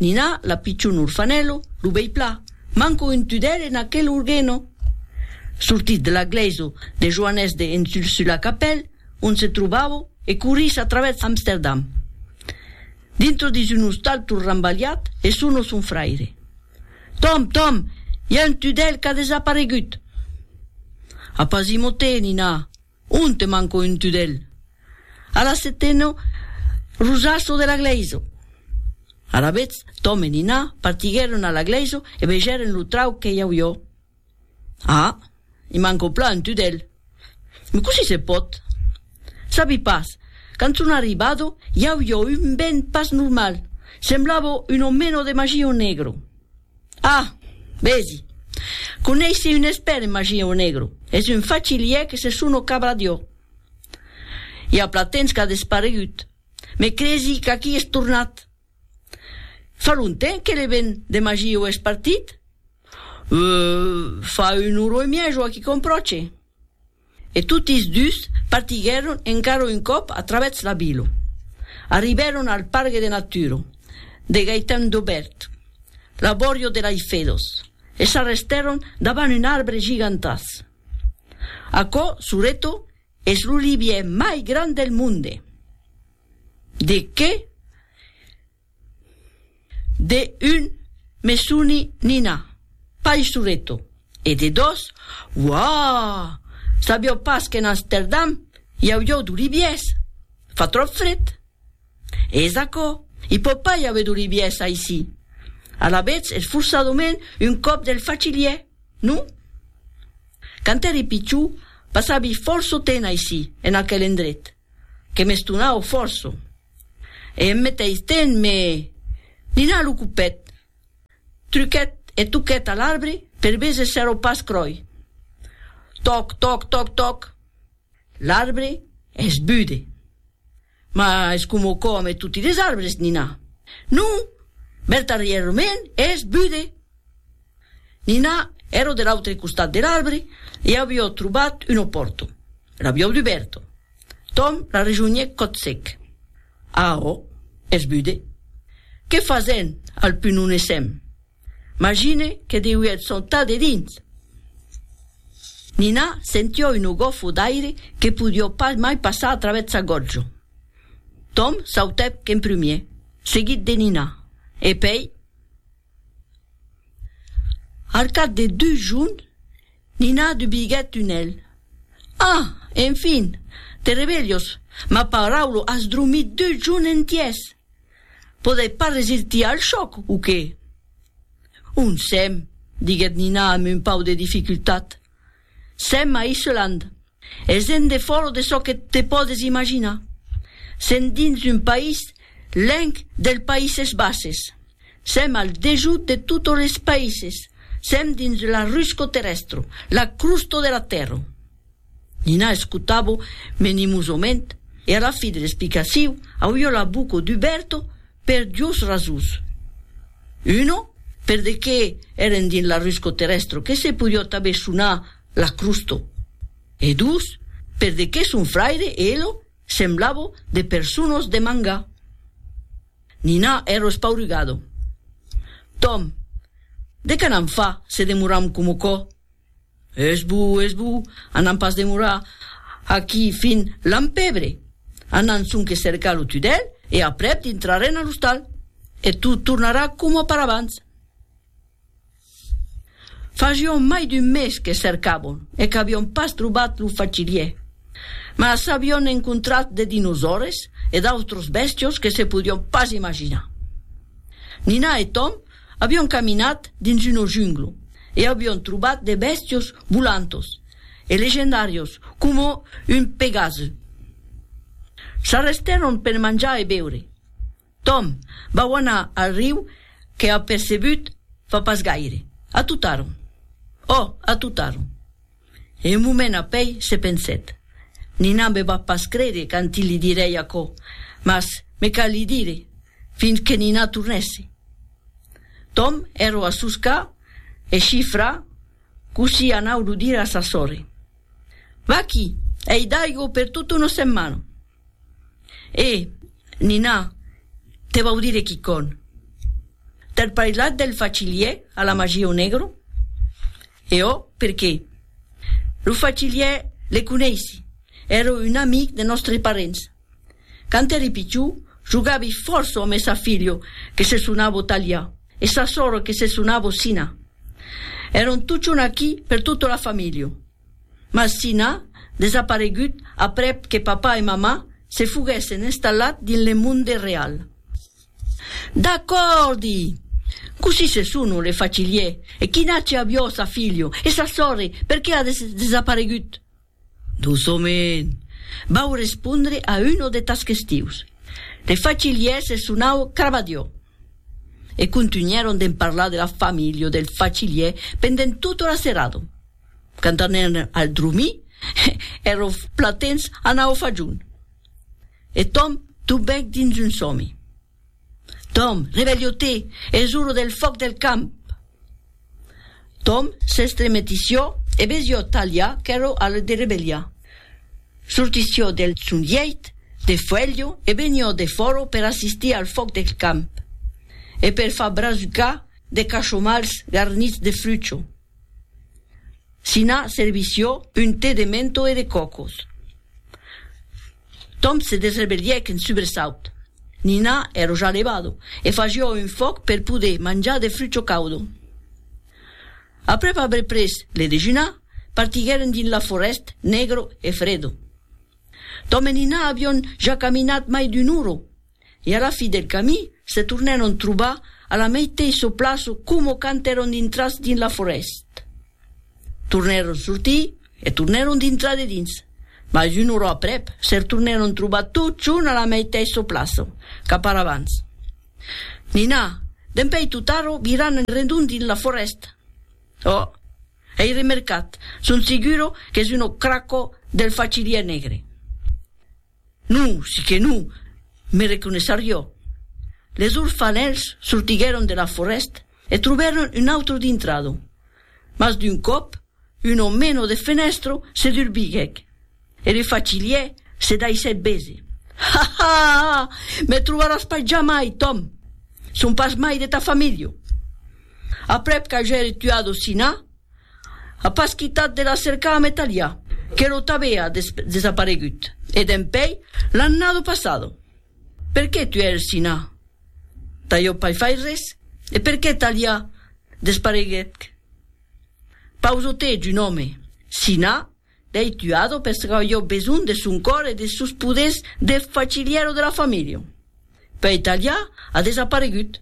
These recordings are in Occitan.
Nina, la pichon orfanèlo, lo bèi pla, manco un tudèl en aquel orgueno! Sortís de la glèiso de Joanès de Ensulsulacapèl, ont se trobavo, e corrís a travèrs Amsterdam, dintro dins un ostal tot rambalhat, e sono son fraire. Tom, Tom, i a un tudèl qu'a desaparegut! Apa, Zimotè, Nina! On te manco un tudèl. A la setena, Rosaço de la glèisa. Alavetz, Tom e Nina partiguèron a la glèisa e vegèren lo trauc que i auió. Ah, i manco plan un tudèl. Me cossí se pòt? Sabi pas, quand son arribado, i auió un vent pas normal, semblavo un omeno de magio negro. Ah! Vesi! Coneissi un espèrt en magia o negro. Es un fachilièr que se sono Cabradiò. I a pla temps qu'a desparegut. Me cresi qu'aquí es tornat. Fa longtemps que l'event de Magio es partit? Euh, fa un oro e mièja o aqui com pròche. E totis dus partiguèron encara un còp a travèrs la vila. Arribèron al Pargue de Natura de Gaëtan Dobert, l'abòrio de Laiffedos, e s'arrestèron davant un arbre gigantàs. Aquò, sureto, es l'olivièr mai grand del monde! De qué? De un, me soni Nina, paisoreto, e de dos, Uaa! Sabieu pas qu'en Amsterdam i auieu d'oliviers? Fa tròp fred. Es aquò, i pòt pas i aver d'oliviers aicí. Alavetz es forçadament un còp del facilièr, non? Quand èri pichon, passavi fòrço temps aicí, en aquel endret. que m'estonau fòrça, e en meteis temps me dinà lo copet, truquèt e toquèt a l'arbre per veser s'èra pas cròi. Tòc, tòc, tòc, tòc! L'arbre es bude! Mas coma còme toti les arbres, Nina. Non, Berta Rièr-Romen es bude! Nina, ero de l'autre costat de l'arbre e avió trobat una pòrta. L'avió dubèrta. Tom la rejonhèc còth sec. Arrò, es bude. Qué fasèm? Al pun on essèm. Magine que deuièt sautar de dins! Nina sentió una gòfa d'aire que podió pas mai passar a travèth sa gòtja. Tom sautèc en prumier, seguit de Nina, e pèi. Al cap de dus jorn, Nina dubiguèt un hèl. Ah! Enfin! Te revelhos! Ma paraulo, as dromit dus jorn entièrs! Podèi pas resirtir al chòc, o qué? Onsem, diguèt Nina amb un pauc de dificultat, Sèm a Islande. Es endefòro de çò que te pòdes imaginar. Sèm dins un país lenc dels Païses Bases. Sèm al dejut de totes es païses. Sèm dins la rusco terrestro, la crusto de la tèrra. Nina escotavo menimosament e a la fi de l'explicaciu auio la boca duberta Per dus rasons. Una, per de qué èren dins l'arrusco terrèstro que se podió tanben sonar la crusto. E dus, per de qué son fraire e elo semblavo de personos de manga. Nina èro espaurugado. Tom, de qué n'am fa se demoram como cò? Es bo, es bo, anam pas demorar aquí fin l'an pebre. Anam sonque cercar lo tudèl e aprèp dintrarén a l'ostal e tot tornarà coma per abans. Fasion mai d'un mes que cercàvon e qu'avion pas trobat lo facilier. Mas avion encontrat de dinosaures e d'autros bèstios que se podion pas imaginar. Nina e Tom Avion caminat dins uno junglo e avion trobat de bèstios volantos e legendàrios coma un pegase. S'arrestèron per manjar e beure. Tom, vau anar al riu que apercebut fa pas gaire. Atutaron. Ò, atutaron. E un moment apèi se pensèt. Nina me va pas crére quand li dirèi aquò, mas me cal li dire, fins que Nina tornèsse. Tom èrò a soscar e chifra cossí anau lo dire a sa sòrre. Vaquí, ei d'aigo per tota una setmana. E, Nina, te vau dire quicòn. T'èr parlat del facilier a la magieu negro? E ò perqué? Lo fachiliè le coneissi, ère un amic de nòstre parents. Quand ère pichou, jogavi fòrça ò mè sa filho que se sonavo Talià e sa sòro que se sonavo Sina. Èron tuchon aquí per tota la familho. Mas Sina desaparegut aprèp que papà e mamà se foguèssen installat dins le monde real. D'acòrdi! Cossí se sono le facilier e chi n'aci aviò sa filho e sa sorre perqué a desaparegut? Doçoment! Vau respondre a uno de tas questius. Le facilier se sonau Cravadiò. E contunhèron d'en parlar de la familho del facilier pendent tota la serada. Quand anèron al dromir, ero platens anau fajon. E Tom tubèc dins un sòmi. Tom, revelhò-te! Es ora del fòc del camp! Tom s'estremetissió e vesió Talha qu'èra a le derevelhar. Sortissió del son lheit de fuèlho e venió defòra per assistir al fòc del camp e per far brasucar de cachomals garnits de frucho. Sina servissió un te de mento e de còcos. Tom se desrevelhèc en subresaut. Nina ero ja levado e fagió un fòc per poder manjar de frucho caudo. Aprèp aver pres le dejunar, partiguèren dins la forèst negro e fredo. Tom e Nina avion ja caminat mai d'un uro E a la fi del camin, se tornèron trobar a la meiteissa plaça coma quand èron dintrats dins la forèst. Tornèron sortir e tornèron dintrar dedins, mas una ora aprèp se retornèron trobar totjorn a la meiteissa plaça, cap ara abans. Nina, Dempèi totaro viran en redon dins la forèsta. Oh! Ei remercat, son segura qu'es una cracò del fachilièr negre. Non, si que non, me reconeissarió. Les orfanèls sortiguèron de la forèst e trobèron un autre dintrado. Mas d'un còp, un omeno de fenèstro se durbiguèc e le fachilhier se daissèt bese. Ha! ha! ha! Me trobaràs pas jamai, Tom! Son pas mai de ta familha. Aprèp qu'agèri tuado Sina, a pas quitat de la cercar amb Etalià, que lo t'avea desaparegut, e dempèi l'annado passado. Per qué tu ère Sina? D'ajò pas fai res, e per qué Etalià despareguec? Pausote d'un òme, Sina, dei tuado per sacar jo besonh de son còr e des sos poders de facilièro de la familha. Pèi Etalià a desaparegut.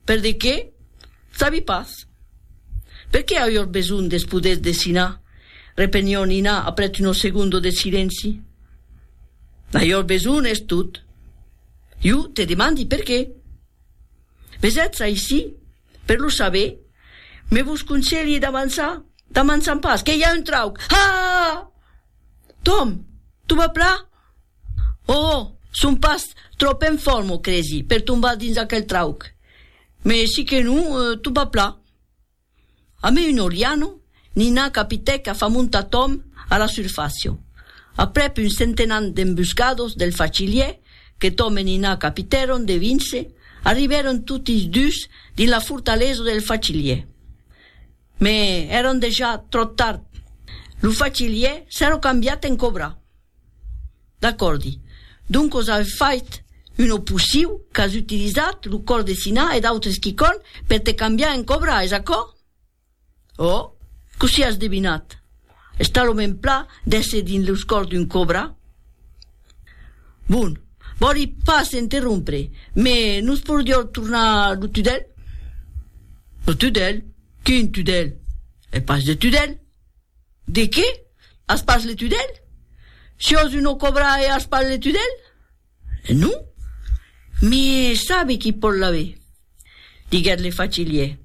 Per de qué? Sabi pas. Per qué auiós besonh de's poder desinar? repenhó Nina aprètz uno segundo de silenci. N'auiós besonh, es tot. Jo te demandi per qué. Mes ètz aicí per lo saber, me vos conselhi d'avançar, d'amançan pas, que i a un trauc! Haa! Tom, tu vas pla? Ohò! Son pas tròp en fòrma, cresi, per tombar dins aquel trauc. Me si que non, tot va plan. A me un oriano, Nina capitèc a fa montar Tom a la surfàcia. Aprèp un centenat d'embuscados del fachilièr que Tom e Nina capitèron de vince, arribèron totis dus dins la fortalesa del fachilièr. Me èran dejà tròp tard. Lo fachilièr s'èra cambiat en cobra. D'acòrdi. Doncos aué fait un oposiu qu'as utilizat lo còr de Siná e d'autres quicòrn per te cambiar en còbra, es aquò? Oh! Cossí as devinat? Està lo mèn pla d'èsser dins los còrs d'un còbra? Bon, vòli pas interrompre, me nos porrior tornar lo tudèl? Lo tudèl? Quin tudèl? È pas de tudèl, De qué? As pas le tudèl? Si ós uno cobra e as pas le tudèl? Non. Mi sabe qui pòt l'aver? diguèt le facilier,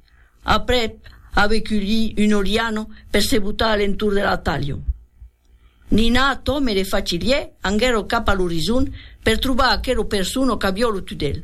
aprèp aver culhí un oriano per se botar a l'entorn de la talha. Nina, Tom e le facilier anguèro cap a l'orizon per trobar aquero persono qu'avió lo tudèl.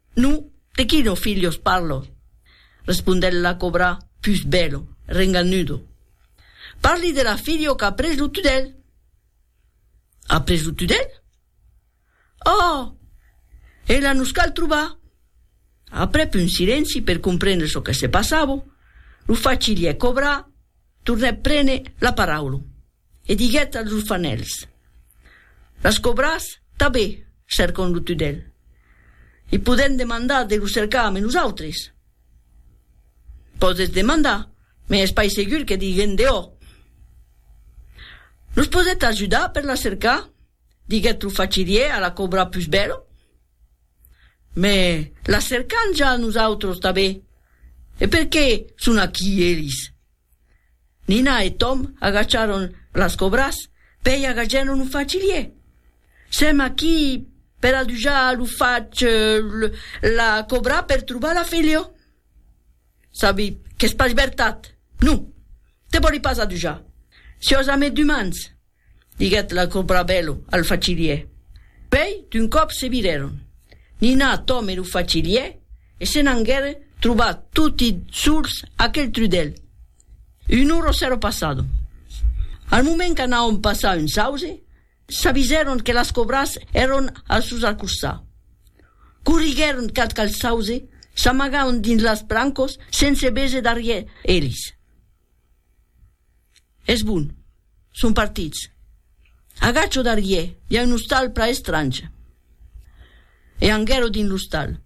No, de quino filhos parlo? respondèt la cobra pus bèlo, renganudo. Parli de la filho qu'a pres lo tudèl. A pres lo tudèl? Oh! Ela nos cal trobar! Aprèp un silenci per comprendre çò que se passava, lo facilièr cobra tornèt prene la paraula. E diguèt als orfanèls, Las cobras tabé cercon lo tudèl. I podèm demandar de lo cercar ame nosautres? Pòdes demandar, me es pas segur que diguèn dehò. Nos podèt ajudar per la cercar? diguèt lo fachirier a la cobra pus bèla. Me las cercan ja nosautres tabé. E perqué son aquí elis? Nina e Tom agachàron las cobras pei agagèron lo facilier. Sèm aquí per adujar lo fach la cobra per trobar la filho. Sabi qu'es pas vertat. Non, te vòli pas adujar. Siós amé d'umans. diguèt la Cobrabèlo al facilier. Pei d'un còp se virèron. Nina, Tom e lo facilier e se n'angueren trobar toti sols aquel trudèl. Un oro s'èra passado. Al moment qu'anàvon passar un sauze, s'avisèron que las cobras èron al sos acostar. Corriguèron cap qu'al sauze, s'amagàron dins las brancos sense véser darrièr elis. Es bon, son partits. Agacho darrier, i a un ostal pla estrange. E anguèro dins l'ostal.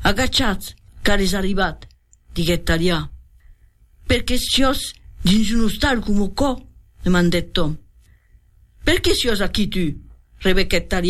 Agachatz, car es arribat, diguèt Talià. Per qué siós dins un ostal coma aquò? demandèt Tom. Per qué siós aquí tu? rebequèt Talià.